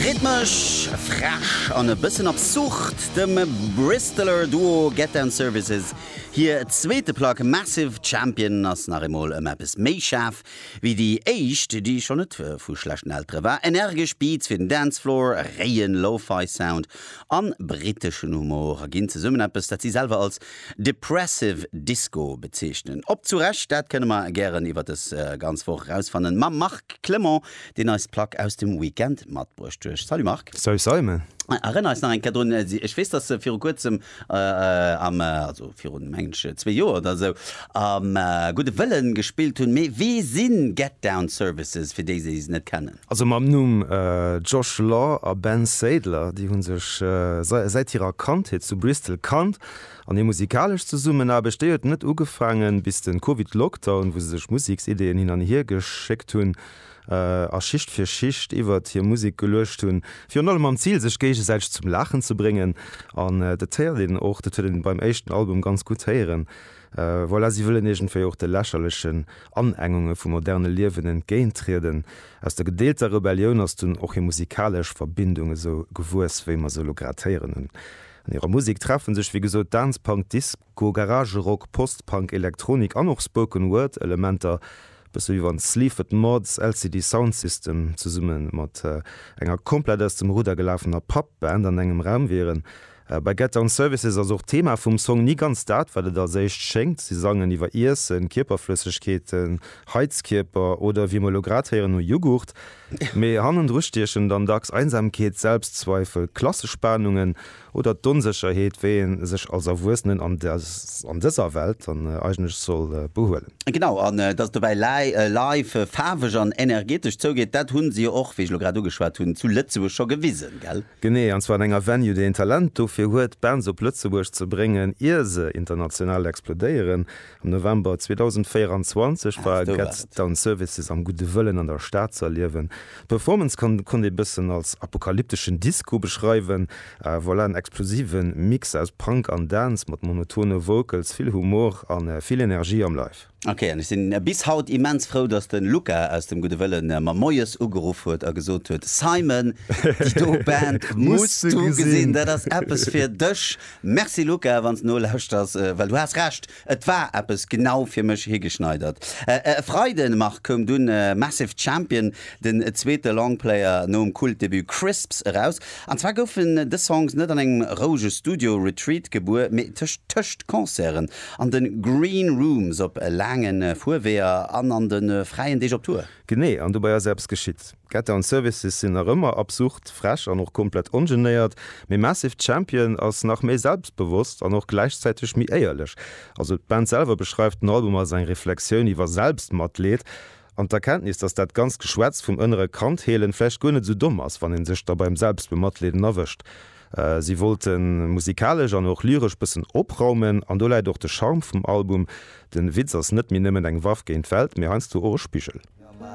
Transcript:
Rhythmesch, frech an e bëssen absurd, dem Bristoler Duo Getdown Services hir zweete Plack Massive Champion ass nach eemol ëm eppes méi schaarf wéi déi éischt, déi schonn net vu schlechten Eltere war. Energesch Beats fir den Dancefloor, réien Lo-Fi Sound a briteschen Humor ginn zesummen eppes, dat si selwer als depressive Disco bezeechnen. Ob zu Recht, dat kënne mer gären iwwer dës ganz Woch erausfannen mam Marc Clement. deen eis d'Plack aus dem Weekend matbruecht huech. Salut Marc! Salut Simon! Erënner eis nach eng Kéier drun, ech weess dass se viru kuerzem am, also virun mengen ech zwee Joer oder esou, am Gudde Wëllen gespillt hunn, mee wie sinn Get Down Services fir déi déi se net kennen? Also mam Numm Josh Law a Ben Sadler, déi hunn sech säit hirer Kandheet zu Bristol kannt An hir musikalesch Zesummenaarbecht, déi huet net ugefaangen bis den Covid-Lockdown, wou se sech Museksideeën hin an hier geschéckt hunn a Schicht fir Schicht iwwert hir Musek geluecht hunn. Virun allem mam Zil sech géigesäiteg zum Laachen ze bréngen an dat héiert een och, dat huet een beim éischten Album ganz gutt héieren. Voilà, si wëllen iergendwéi och de lächerlechen Anengunge vum moderne Liewen entgéintrieden. Aus der gedeelter Rebellioun ass dunn och hir musikalesch Verbindung esou gewuess, wéi mer se elo grad héieren hunn. An hirer Musek treffe sech wéi gesot Dance Punk, Disco, Garage Rock, Post Punk, Elektronik an och Spoken Word Elementer, e bësse wéi wann Sleaford Mods, LCD Sound System zesumme mat enger komplett aus dem Rudder gelafener Pub Band an engem Raum wieren. Bei Get Down Services ass och d'Thema vum Song ni ganz dat wat et als éischt schéngt. Si sangen iwwer Iessen, Kierperflëssegkeeten, Heizkierper oder, wéi mer elo grad héieren, no Jughurt. Mee hannendru stiechen dann dacks Einsamkeet, Selbstzweifel, Klassespanungen oder d'Onsécherheet, wéi ee sech als Erwuessenen an dëser Welt dann eigentlech soll behuelen. Genau, an dass et dobäi live, faarweg an energetesch zougeet, dat hu se jo och, wéi ech elo grad ugeschwat hunn, zu Lëtzebuerg scho gewisen, gell? Genee, an zwar an enger Venue, déi een Talent dofir huet, Bands op Lëtzebuerg ze bréngen, ier se international explodéieren. Am November 2024 war Get Down Services am Gudde Wëllen an der Stad ze erliewen. D'Performance konnt ee bëssen als apokalypteschen Disco beschreiwen. Voilà en explosive Mix aus Punk an Dance mat monotone Vocals, vill Humor a vill Energie am Live. Ok, an ech sinn bis haut immens frou, dass den Luca aus dem Gudde Wëllen mer moies ugeruff huet a gesot huet, Simon, déi do Band muss du gesinn, dat ass eppes fir dech. Merci Luca, wann s nolauschters, well du has Recht, et war eppes genau fir mech higeschneidert. E Freiden, Marc, koum dunn Massive Champion, den zweete Longplayer nom Kultdebut Crisps eraus. An zwar goufen dës Songs net an engem rouege Studio Retreat gebuer, mee tëscht tëscht Concerten, an de Green Rooms, op laange Fuerweeër an an de fräien Deeg op Tour. Genee, an dobäi ass eppes geschitt. D'Getter an Services sinn nach ëmmer absurd frech an och komplett ongenéiert, mee Massive Champion ass nach méi selbstbewosst an och gläichzäiteg méi éierlech. Also d'Band selwer beschreift den Album als eng Reflexioun iwwer Selbstmatleed an d'Erkenntnis, dass dat ganzt Geschwätz vum ënnere Kand heelen vläicht guer net esou domm ass, wann een sech da beim Selbstbematleeden erwëscht. Si wollte musikalesch an och lyresch bëssen opraumen an do läit och de Charme vum Album, den Witz ass net méi nëmmen eng Waff géint d'Welt, mee heiansdo och e Spigel.